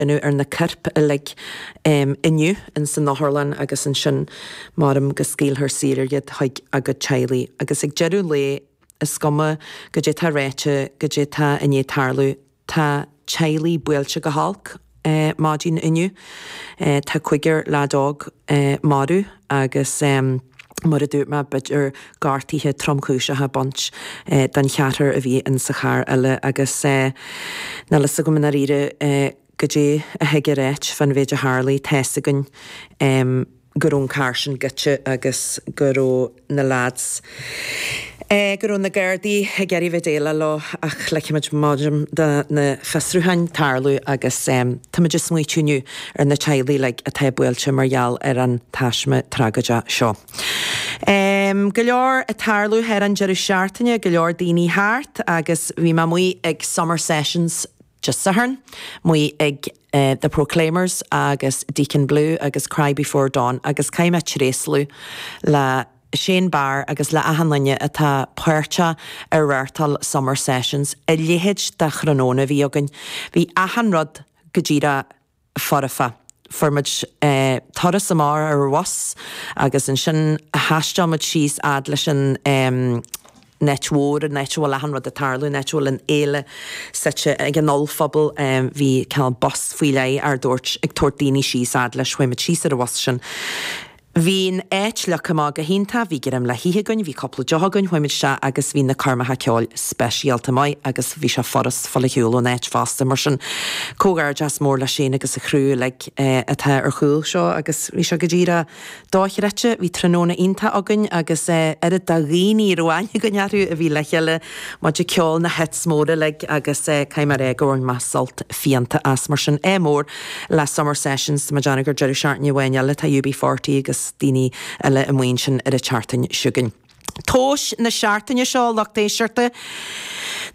iniúchadh ar na coirp uilig inniu ins an otharlann agus ansin measaim go scaoilfear saor iad chuig a gcuid teaghlaigh agus ag deireadh lae is cuma goidé tá ráite goidé tá i ndiaidh tarlú tá teaghlaigh buailte go holc maidin inniu, tá cuigear leaid óg marbh. Agus mar a dúirt mé b'fhéidir gortaithe tromchúiseacha bainte don cheathrar a bhí in sa charr eile agus níl a fhios agam i ndáiríre goidé a thig a ráit fán mhéid a tharlaigh. Tá's againn go raibh an carr sin goidte agus go raibh na leaids, go raibh na Gardaí ag iarraidh a bheith déileáil leo ach ligfidh muid do na fiosrúcháin tarlú agus táimid ag smaoitiú inniu ar na teaghlaigh uilig atá buailte mar gheall ar an taisme tragóideach seo. Go leor ag tarlú thar an deireadh seachtaine, go leor daoine thart agus bhí mé amuigh ag Summer Sessions, Dé Sathairn, amuigh ag The Proclaimers agus Deacon Blue agus Cry Before Dawn agus caithfidh mé tréaslú le Shane Barr agus le achan duine atá páirteach i reáchtáil Summer Sessions. A leithéid de thráthnóna a bhí againn. Bhí achan rud go díreach. foirfe. Fuair muid turas amach ar bhus agus ansin thaistil muid síos fhad leis an áit mhór, an áit a bhfuil achan rud ag tarlú, an áit a bhfuil an fhéile suite. Ag an ollphuball bhí cineál bus faoi leith ár dtabhairt, ag tabhairt daoine síos fhad leis. Chuaigh muid síos ar an bhus sin. Bhí an áit leagtha amach go hiontach, bhí greim le hithe againn, bhí cúpla deoch againn, chuaigh muid isteach agus bhí na coirmeacha ceoil speisialta maith agus bhí sé furast fáil ar shiúl ón áit fosta mar sin comhghairdeas mór le Shane agus a chriú uilig atá ar chúl seo agus bhí sé go díreach dochreidte, bhí tráthnóna iontach againn agus oiread de dhaoine a raibh aithne againn orthu a bhí le chéile, muid ag ceol na hits móra uilig agus caithfidh mé a rá go bhain mé sult fiánta as mar sin ádh mór le Summer Sessions, tá mé ag déanamh go bhfuil deireadh seachtaine amháin eile tá UB40 agus daoine eile amuigh ansin ar a tseachtain chugainn. Duais na seachtaine seo, a lucht éisteachta.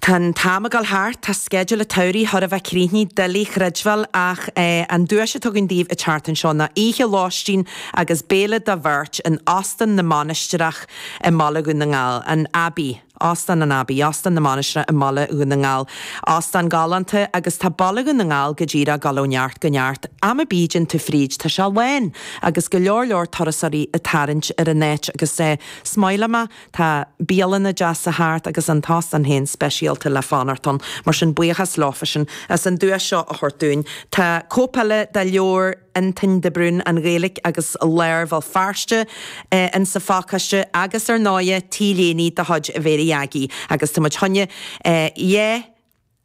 Tá an t-am ag dul thart, tá sceideal a tsamhraidh thar a bheith críochnaithe, doiligh chreidbheáil, ach an duais atá againn daoibh a tseachtain seo ná oíche lóistín agus béile do bheirt in Óstán na Mainistreach i mBaile Dhún na nGall, an Abbey. Óstán an Abbey, Óstán na Mainistreach i mBaile Dhún na nGall. Óstán galánta agus tá Baile Dhún na nGall go díreach ag dul ó neart go neart. Am ar bith a dtéann tú fríd tá sé lán agus go leor leor turasóirí ag tarraingt ar an áit agus eh smaoiteoidh mé, tá bialanna deasa thart agus an t-óstán féin speisialta le fanacht ann. Mar sin buíochas leofa sin as an duais seo a thabhairt dúinn. Tá cóip eile de leabhar. Antain de Brún, An Ghaeilge agus Lár Bhéal Feirste, in sa phacáiste agus ar ndóighe t-léiní de chuid Mhéirí Aggie agus tá muid choinne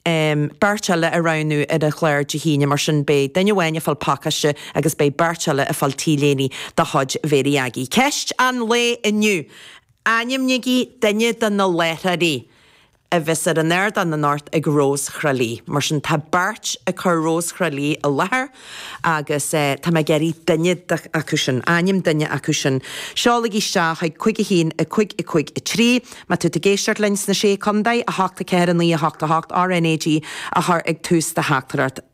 beirt eile a roghnú ar an chlár Dé hAoine mar sin beidh duine amháin ag fáil pacáiste agus beidh beirt eile ag fáil t-léiní de chuid Mhéirí Aggie. Ceist an lae inniu, Ainmnígí duine de na láithreoirí a bheas ar an ardán anocht ag Rós Thráighlí. Mar sin tá beirt ag cur Rós Thráighlí i láthair agus tá mé ag iarraidh duine acu sin, ainm duine acu sin, seolaigí isteach chuig cúig a haon, a cúig, a cúig, a trí, má tú ag éisteacht linn sna Sé Chondae, a hocht, a ceathair, a naoi, a hocht, a hocht, RNAG a chur ag tús do theachtaireacht.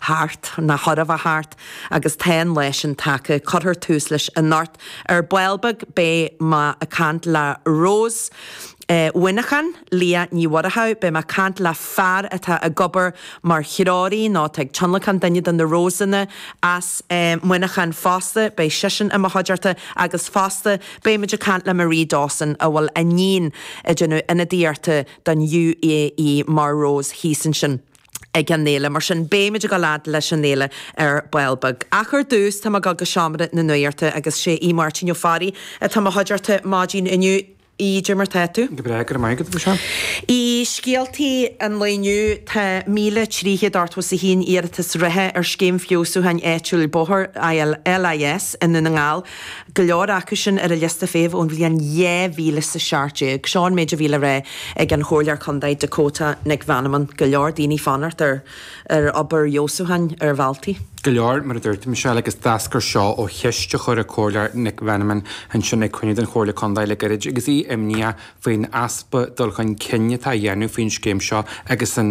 thart, ná chor a bheith thart, agus tá an lá sin tagtha. Cuirfear tús leis anocht ar ball beag. Beidh mé ag caint le Rós Mhuineacháin, Liadh Ní Mhuireadhach, beidh mé ag caint le fear atá ag obair mar threoraí nó atá ag tionlacán duine de na Rosanna as Muineachán fosta, beidh seisean i mo chuideachta agus fosta beimid ag caint le Marie Dawson a bhfuil a níon ag déanamh ionadaíochta don UAE mar Rós thíos ansin. ag an fhéile. Mar sin, beimid ag gabháil ar aghaidh leis an fhéile ar ball beag. Ach ar dtús, tá mé ag dul go Seomra na Nuachta agus sé Máirtín Ó Fearraigh atá i mo chuideachta maidin inniu. Cad é mar tá tú? Go breá, go raibh maith agat, a Mhichelle. E. Scéaltaí an lae inniu, tá míle trí chéad ochtó is a haon iarratas réitithe ar Scéim Feabhsúcháin Áitiúil Bóthar, LIS, i nDún na nGall. go leor acu sin ar an liosta feithimh ón bhliain dhá mhíle is a seacht déag. Seo an méid a bhí le rá ag an Chomhairleoir Contae Dakota Nic Mheanman, go leor daoine fanacht ar ar obair fheabhsúcháin ar bhealtaí. go leor, mar a dúirt tú, a Mhichelle, agus d'eascair seo ó cheist a chuir an Comhairleoir Nic Mheanman ansin ag cruinniú den Chomhairle Contae le gairid agus í imníoch faoin easpa dul chun cinn atá á dhéanamh faoin scéim seo agus an